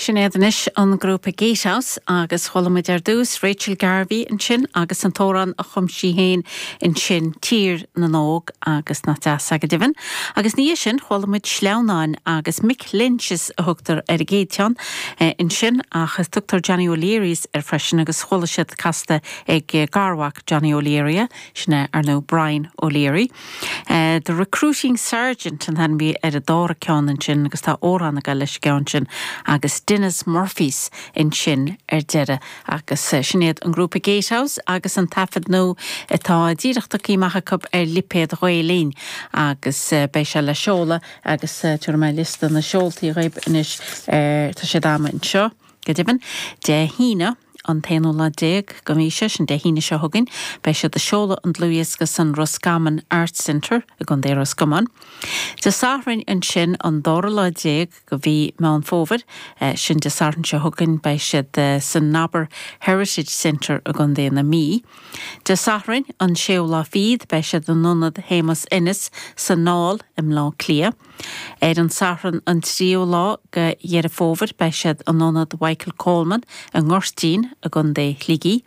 Sin iad anois an grúpa Gatehouse agus chuala muid ar dtús Rachel Garvey ansin agus an t-amhrán a chum sí féin ansin, Tír na nÓg, agus nach deas é go deimhin. Agus ina dhiaidh sin chuala muid Sleamhnáin agus Mick Lynch's a thugtar ar an gcéad cheann ansin ach tugtar Johnny O'Leary's air freisin agus chuala siad casta ag garmhac Johnny O'Leary é, sin é, ar ndóigh, Brian O'Leary. The Recruiting Sergeant an t-ainm a bhí ar an dara ceann ansin agus tá amhrán ag gabháil leis an gceann sin agus Denis Murphy's ansin ar deireadh agus sin iad an grúpa Gatehouse agus an taifead nua atá díreach tagtha amach acu ar lipéad Ghael-Linn agus beidh sé le seoladh agus tabharfaidh mé liosta na seoltaí dhaoib anois mar tá siad agam anseo. Go deimhin, Dé hAoine, an t-aonú lá déag den mhí seo, sin Dé hAoine seo chugainn, beidh siad ag seoladh an dlúthdhiosca san Roscommon Arts Centre i gContae Ros Comáin. Dé Sathairn ansin, an dara lá déag de mhí Meán Fómhair, sin Dé Sathairn seo chugainn, beidh siad san Nobber Heritage Centre i gContae na Mí. Dé Sathairn, an séú lá fichead, beidh siad in Ionad Shéamus Ennis san Aill i mBleá Cliath. Ar an Satharn an tríú lá de Dheireadh Fómhair beidh siad in Ionad Mhichael Coleman i nGoirtín i gContae Shligigh.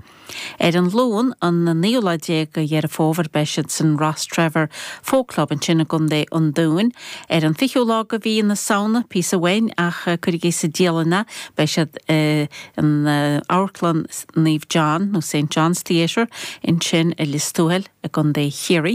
Ar an Luan an naoú lá déag de Dheireadh Fómhair beidh siad san Rostrevor Folk Club ansin i gContae an Dúin. Ar an fichiú lá de Mhí na Samhna, píosa uainn ach cuirigí sa dialann é, beidh siad in Amharclann Naomh John nó Saint John's Theatre ansin i Lios Tuathail i gContae Chiarraí.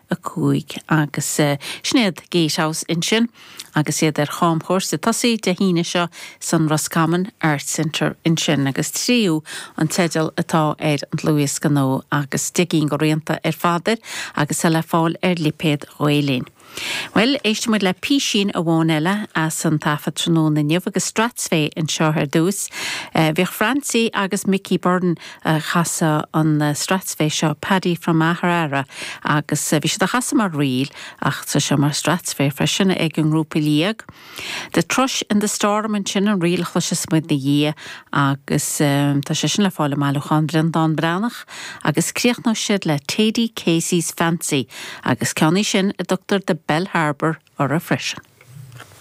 5 agus sin iad Gatehouse ansin agus iad ar chamchuairt ag tosaí Dé hAoine seo san Roscommon Arts Centre ansin agus Tríú an teideal atá ar an dlúthdhiosca nua agus deich gcinn de rianta ar fad air agus é le fáil ar lipéad Ghael-Linn. Bhuel, éistfidh muid le písín amháin eile as an taifead tráthnóna inniu agus Strathspey anseo ar dtús. Bhíodh Francie agus Mickey Byrne ag casadh an strathspey seo, Paddy from Maherara, agus bhí siad á chasadh mar ríl ach tá sé mar strathspey freisin ag an ngrúpa Liag. The Thrush in the Storm ansin an ríl a chloiseas muid ina dhiaidh agus tá sé sin le fáil i mbailiúchán Bhreandán Breathnach agus críochnóidh siad le Thady Casey's Fancy agus ceann í sin a dtugtar The Bell Harbour uirthi freisin.